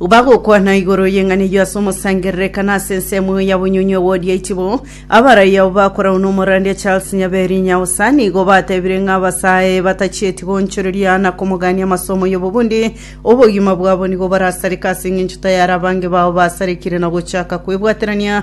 bagokwana igoro y'eng'ana eyio ase omosangerereka na ase ensemo ya bonyonyi ogodia itibo abarai abo bakorau n'omorandia charles nyaberi nyaosa nigo batebire ng'a abasae batachieti goonchoreria na komogania amasomo y'obobundi obogima bwabo nigo barasareka ase eng'encho tayari abange bao basarekire na gochaka kwebwaterania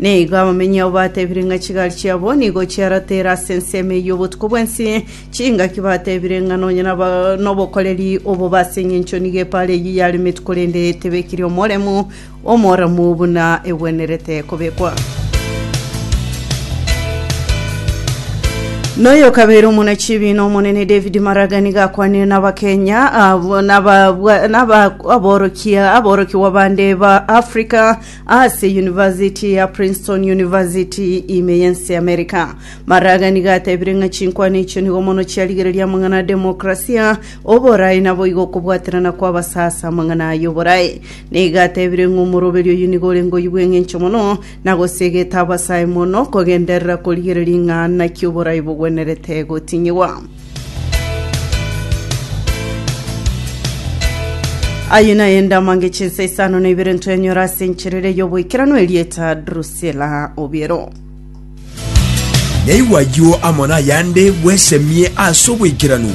Nigo abamenyi abo batebire ng'a chigari chiabo nigo chiaratere ase ensemo eyio obotuko bwensi, chingaki batebire ng'a nonye naba nobokoreri obobe ase engencho nigo epaara eyio yaremetwe korende tebekiri omoremu omoramu buna egwenerete kobekwa. Noyo kabere omona chibiina omonene David Maraga nigo akwanire n'abakenya abo- n'ababwa- n'aba- aborokia aborokigwa bande ba Africa Ase University ya Princeton University ime y'ense y'Amerika, Maraga nigo atebire ng'a chinkwana echio nigo mono chiarigereria amang'ana a demokrasia, oborae naboigo okobwaterana kw'abasa ase amang'ana aya oborae. Nigo atebire ng'a omoroberi oyio nigo ore ngoyi bw'engencho mono, na gosiegete abasa aye mono kogenderera korigereria ng'a naki oborae bogwenerete gotinyigwa. Ayio naye ndamange chinsa isano na ibere ntwenyora ase encherere y'oboikeranu erieta Drusila Obiero. Naigwa ayio amo nayande bwesemie ase oboikeranu.